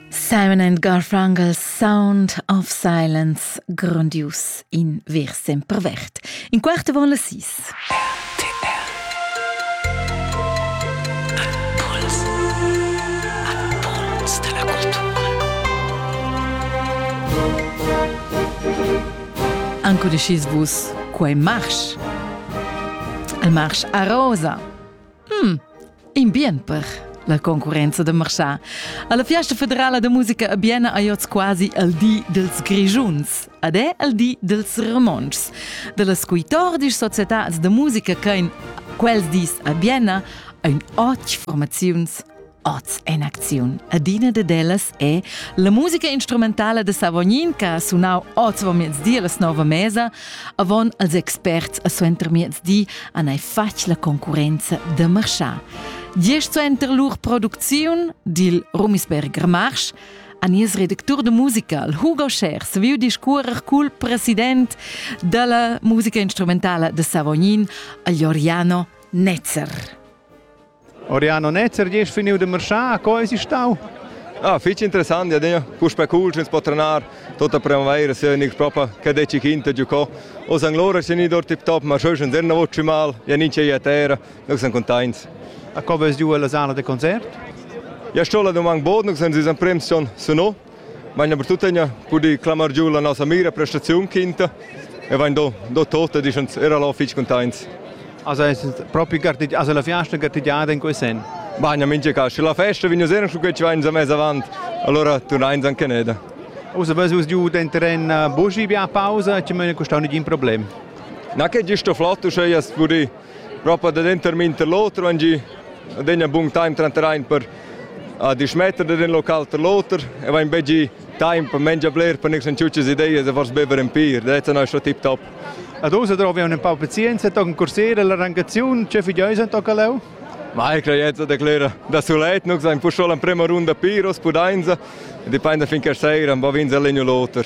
Simon and Garfunkel Sound of Silence grandius in ver sempervert. In quart von las sis. Ancudecis vus quei marsch? Il marsch a rosa. Hmm, in bien per la concurrenza da marchà. Alla Fiesta federala da musica a Biena hai oz quasi al di dels Grigiuns, ad è al di dels Ramonschs, dellas coitordisch societats da musica che in quels dis a Biena ein otg formaziuns Oz en acziun. Adina de dellas è la musica instrumentala de Savognin che ha sunau oz vo miez di alla nova mesa, avon als experts a suenter miez di han ei fatg la concurenza de marschar. Diesch suenter lur producziun dil Rumisberger Marsch a nies redactur de musica, Hugo Schers, viu discuorer cul president dalla musica instrumentala de Savognin, Alioriano Netzer. Oriano Netzer, gest finiu de marschar, co eis stau? Ah, fich interessant, ja, ja. Puspei cool, ins po trenar, tota primavera, se niks propa, che deci quinta giocò. O san lora se ni dort tip top, ma schau schon zerna voci mal, ja ninche ia terra, noi siamo contents. A co vas giù alla sala de concert? Ja, sto la domang bod, noi siamo prem son, sono. Meina per tuttegna pudi clamar giu la nossa mira prestaziun quinta e vain do, do tota, dischans era lo fich containts. Also es propi gartit, also la fiasta gartigiada in quei sen. Bagna mincha cas, sche la festa vigna sera su quei vain za mez avant, allora turnain an caneda. Usa bas us giu den terren buschi bia pausa, ci möne custau nigin problem. Na che giusto flotto, sche jas pudi propa da denter minter l'oter van gi ad egna bun time tranter ein per a dismetter da den local ter l'oter e vain be gi time per mengia bler per nix ciucas ideas e fors bever en pir that's a nostra tip top Ad usa drovi un pau pazienza, tochen cursera la rangaziun, che fideus en tocca leu? Ma e creiezza declera da sulet, nux ein pusol en prema runda piros pudainza, e dipende finché sera, va vinza legno l'oter.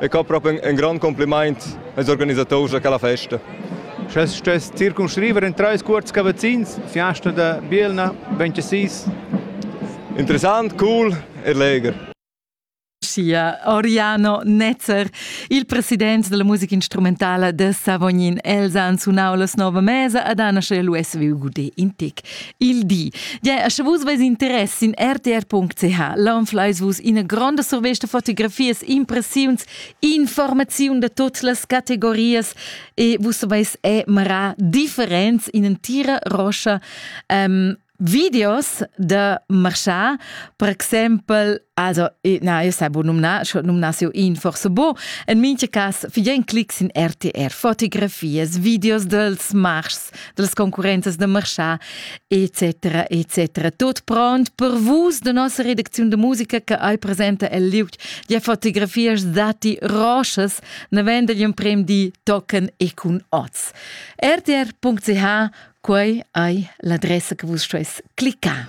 e co propi un grond compliment als organisators da quella festa. Sche stuess circumscriver in treis cuorts cavazzins, fiasta da Bielna, 26. Interessant, cool e leger. sia Oriano Netzer. Il president della musica instrumentale de Savognin Elsa han sunau la nova mesa ad Anna Lues vi Gudé in tic. il di. Ja, sche vus veis interess in rtr.ch, laun fleis vus ina gronda survesta fotografias, impressiuns, informaziun da totes las categorias e vus saveis emarar differents in entira roscha um, videos da marchar, per exempel, also, na, io sai bo numnar, schon numnar io in forse bo, en minche cas, fidien clics in RTR, fotografias, videos dels marchs, dels concurrenzas da marchà, etc. etc. Tot pront per vus da nossa redacziun de musica che ei presenta el liug de fotografias dati rochas navend degli emprem di tocan e cun oz. rtr.ch quei ei l'adressa che vus stueis cliccare.